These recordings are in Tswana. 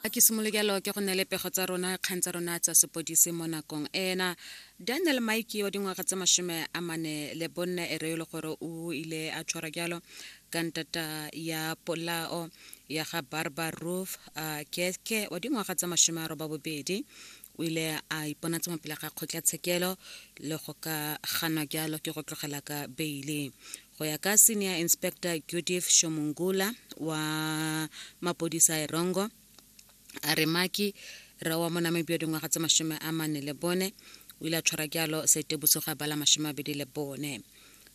a ke simolokelo ke go neele pego tsa rona kgang tsa rona tsa sepodisi mo nakong ena daniel mike wa dingwaga tse masome a mane le bonna e re e le gore o ile a tshwarwa jalo ka ntata ya polao ya ga barbar roof a keke wa dingwaga tsa masome a roba bobedi o ile a iponatsa mopele ga kgotlatshekelo le go ka ganwa jalo ke go tlogela ka beile go ya ka senior inspector judith shomungula wa mapodisa a erongo a re maki re wa mo namibia dingwaga tse masome a mane le bone o ile a tshwara jalo setebuso ga bala masome a bedi le bone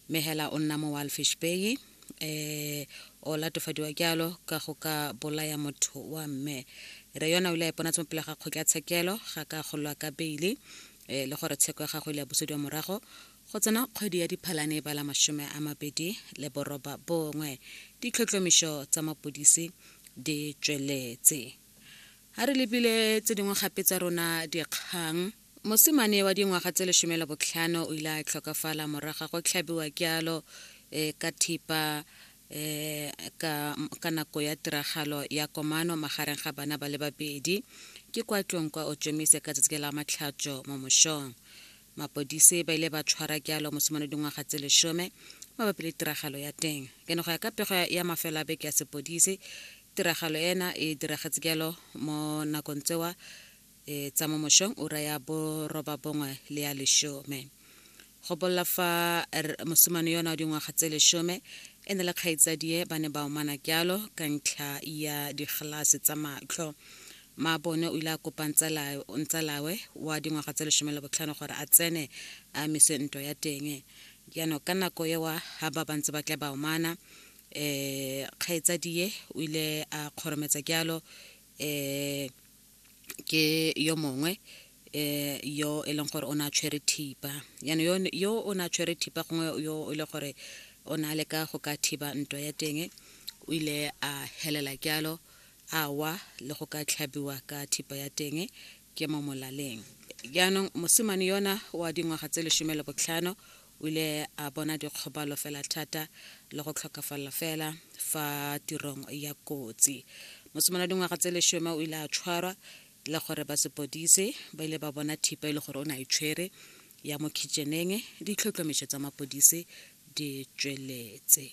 mme hela o nna mo walfish bay um o latofadiwa jalo ka go ka bolaya motho wa mme re yona o ile a iponatse mo pele ga kgotlatshekelo ga ka golwa ka beile um le gore tsheko ya gago ile ya busediwa morago go tsena kgwedi ya diphalane ba la masome a mabedi le boroba bongwe ditlhotlhomišo tsa mapodisi di tsweletse ga re lebile tse dingwe gape tsa rona dikgang Mosimane wa dingwaga tse lesome le botlhano o ile a tlhokafala morago ga go tlhabiwa kealo e, ka thipa e, ka, ka nako ya tiragalo ya komano magareng ga bana ba le babedi ke kwa tlong kwa otšomise ka tsatsi la matlhatso mo mošong mapodise ba ile ba tshwara kealo mosimane dingwaga tse lesome mabapi le tiragalo ya teng ke ne go ya ka pego ya mafelo a beke ya sepodise tiragalo ena e diragetse kealo mo nakong tsewa e tsa mo mošong ura ya borobabongwe le ya lešome go bolela fa mosumane yona wa dingwaga tse lešome e ne le kgaitsadie ba ne ba omana kyalo ka ntlha ya digelase tsa matlho maabone o ile a kopa ntsalawe wa dingwaga tse lešome le botlhano gore a tsene a mise ntwa ya teng jaanong ka nako ewa ga ba bantse ba tla ba omana um kgaitsadie o ile a kgorometsa kyalo um ke yo mongwe eh yo e leng gore o ne a tshwere thipa yaanong yo o ne a tshwere thipa gongwe yo e le gore o ne a leka go ka thiba ntwa ya teng o ile a helela jalo a wa le go ka tlhabiwa ka thipa ya teng ke mo molaleng jaanong mosimane yona wa dingwaga tse lesome le botlhano O ile a bona dikgobalo fela thata le go tlhokafalela fela fa tirong ya kotsi. Mosimane wa dingwaga tse leshome o ile a tshwarwa le gore ba sepodise ba ile ba bona thipa e le gore o ne a e tshwere ya mo kitšeneng. Ditlhotlhomišo tsa mapodise di tsweletse.